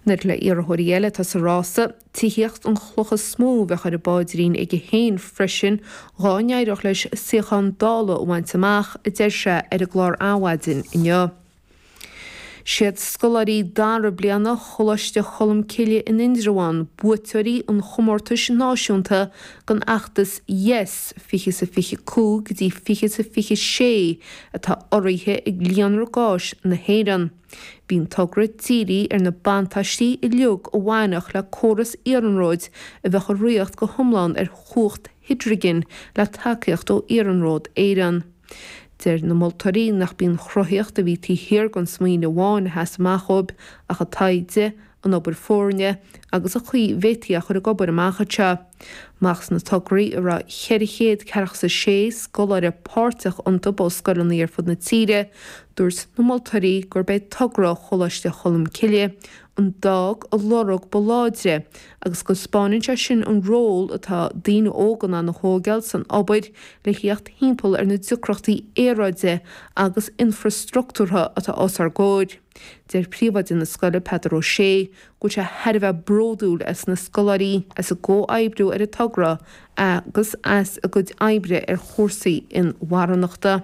Nuair le iarrthóirí eile atá sa rása, tithíocht an chloch is mó a bheadh ar an bpáidrín aige féin freisin dhá n-éireodh leis suíochán Dála a bhaint amach, a deir sé ar an gclár Adhmhaidin inniu. Siad scoláirí dara bliana Choláiste Cholmcille in Indreabhán buaiteoirí an chomórtais náisiúnta don fheachtas Yes 20 sa 25 go dtí 20 sa 26 atá urraithe ag Líonra Gáis na hÉireann. Bhí an togra dírithe ar na buntáistí uilig a bhainfeadh le córas iarnróid a bheadh ag ritheacht go hiomlán ar chumhacht hidrigin le tacaíocht ó Iarnród Éireann. Deir na moltóirí nach b'í an chruthaíocht a bhí taobh thiar den smaoineamh amháin a sheas amach dóibh ach an taighde an obair foirne agus an chaoi a bhféadfaí é a chur ag obair amach anseo. Amach as na tograí a raibh 400 ceathracha is a sé scoláire páirteach iontu ó scoileanna ar fud na tíre, dúirt na moltóirí gurb é togra Choláiste Cholm Cille a d'fhág an lorg ba láidre agus go dtaispeáineann sé sin an ról atá daoine óga in ann a thóigeáil san obair le theacht thimpeall ar na deacrachtaí aeráide agus infrastructúrtha atá os ár gcomhair. Deir Príomhoide na scoile, Peadar Ó Sé, go bhfuil sé thar a bheith bródúil as na scoláirí as a gcomhoibriú ar an togra agus as a gcuid oibre ar chúrsaí inmharthanachta.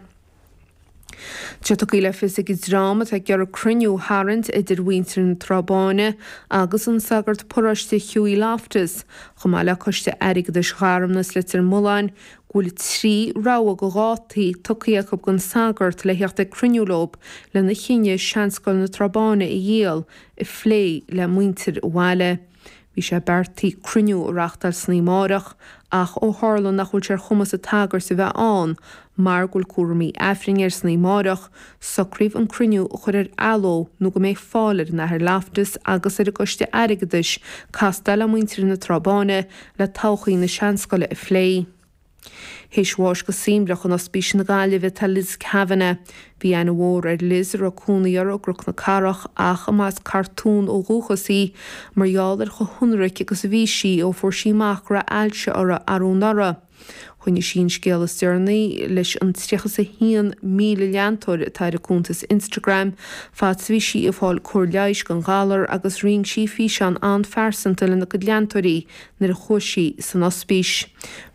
Tá sé tugtha le fios ag an dream atá ag iarraidh cruinniú a tharraingt idir mhuintir na Trá Báine agus an sagart paróiste Hughie Loftus, chomh maith le Coiste Airgeadais Gharmna is Leitir Mealláin, go bhfuil trí rogha de dhátaí tugtha acu don sagart le theacht ag cruinniú leo lena chinneadh seanscoil na Trá Báine a dhíol a phlé le muintir an bhaile. Bhí sé beartaithe cruinniú a reáchtáil san oíche amárach ach ó tharla nach bhfuil sé ar chumas an tsagairt a bheith ann mar go bhfuil cúramaí Aifrinn air san oíche amárach, socraíodh an cruinniú a chur ar athló nó go mbeidh fáil ar an Athair Loftus agus ar an gcoiste airgeadais castáil le muintir na Trá Báine le todhchaí na seanscoile a phlé. Théis bháis go suaimhneach in Ospís na Gaillimhe tá Liz Kavanagh. Bhí aithne mhór ar Liz, a raibh cónaí uirthi i gCnoc na Cathrach ach a mba as Cartún ó dhúchas í, mar gheall ar chomh hionraic agus a bhí sí ó fuair sí amach go raibh ailse uirthi arú anuraidh. Choinnigh sí an scéal is deireanaí leis an 31,000 leantóir atá ar a cuntas Instagram fad 's bhí sí ag fáil cóir leighis don ghalar agus roinn sí físeán an-phearsanta lena cuid leantóirí nuair a chuaigh sí san ospís.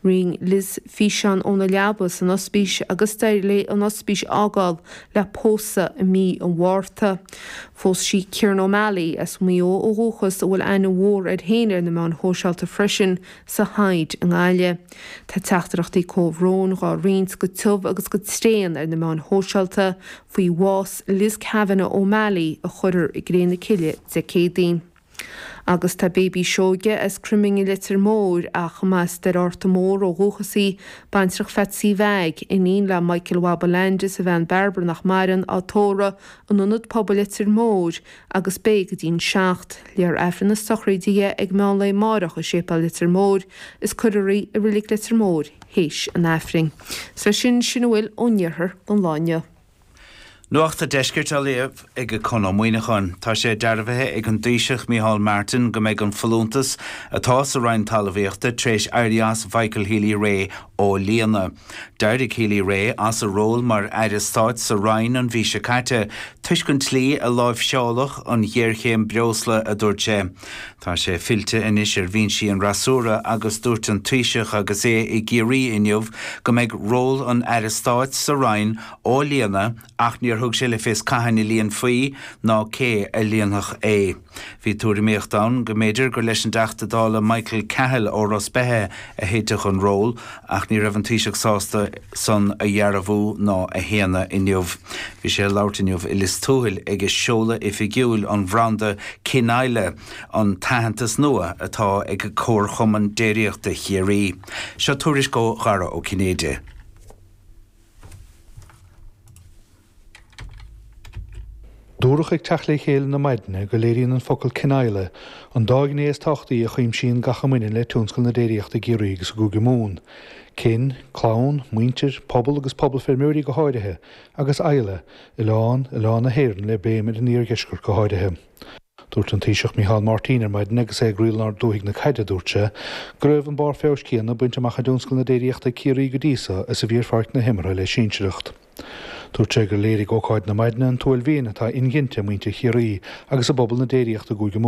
Roinn Liz físeán óna leaba san ospís agus d'éirigh léi an ospís a fhágáil le pósadh i mí an Mhárta. Phós sí Kieran O'Malley, as Maigh Eo ó dhúchas, a bhfuil aithne mhór air féin ar na meáin shóisialta freisin sa Hyde i nGaillimh. Tá teachtaireachtaí comhbhróin dhá roinnt go tiubh agus go tréan ar na meáin shóisialta faoi bhás Liz Kavanagh O'Malley a chuirfear i gcré na cille Dé Céadaoin. Agus tá Baby Seoige as Cruiming i Leitir Móir ach a mb'as Doire Fhatharta Mór ó dhúchas í, baintreach Pheatsaí Mheaig, iníon le Michael Bhaba Landy is a bhean Bairbre nach maireann, á tórramh in Ionad Pobail Leitir Móir agus beidh go dtí'n seacht. Léifear Aifreann na sochraide dhi ag meán lae máireach i Séipéal Leitir Móir is cuirfear í i Reilig Leitir Móir th'éis an Aifrinn. 'S leis sin, sin a bhfuil ón iarthar gon lá inniu. Nuacht a' Deiscirt á léamh ag Conn Ó Muíneacháin. Tá sé dearbhaithe ag an dTaoiseach Micheál Martin go mbeidh an folúntas atá sa Roinn Talmhaíochta tar éis éirí as Mhichael Healy-Rae á líonadh. D'éirigh Healy-Rae as a ról mar aire stáit sa roinn an mhí seo caite toisc an tslí a láimhseáladh an ghéarchéim breosla, a dúirt sé. Tá sé fillte anois ar bhinsí an fhreasúra agus dúirt an Taoiseach agus é i gCiarraí inniu go mbeidh ról an aire stáit sa roinn á líonadh ach níor thug sé le fios cathain a líonfaí ná cé a líonfadh é. Bhí tuairimíocht ann go mb'fhéidir gur leis an dTeachta Dála Michael Cahill ó Ros Beithe a thitfeadh an ról ach ní raibh an Taoiseach sásta san a dhearbhú ná a shéanadh inniu. Bhí sé ag labhairt inniu i Lios Tuathail ag seoladh oifigiúil an bhranda Kinisla, an t-aitheantas nua atá ag Comharchumann Déiríochta Chiarraí. Seo tuairisc ó Dhara Ó Cinnéide. Dúradh ag teacht le chéile na maidne go léiríonn an focal 'Kinisla' an dá ghné is tábhachtaí a chuimsíonn gach a mbaineann le tionscal na déiríochta i gCiarraí agus i gCúige Mumhan, kin, clann, muintir, pobal agus pobal feirmeoirí go háirithe, agus isla, oileán, oileán na hÉireann le béim ar an iardheisceart go háirithe. Dúirt an Taoiseach Micheál Martin ar maidin agus é ag triall ar dhúthaigh na caide, dúirt sé, go raibh an barr feabhais céanna bainte amach i dtionscal na déiríochta i gCiarraí go dtí seo is a bhí ar pháirc na himeartha le sinsearacht. Dúirt sé gur léirigh ócáid na maidine an t-uaillmhian atá inghinte i muintir Chiarraí agus i bpobal na déiríochta i gCúige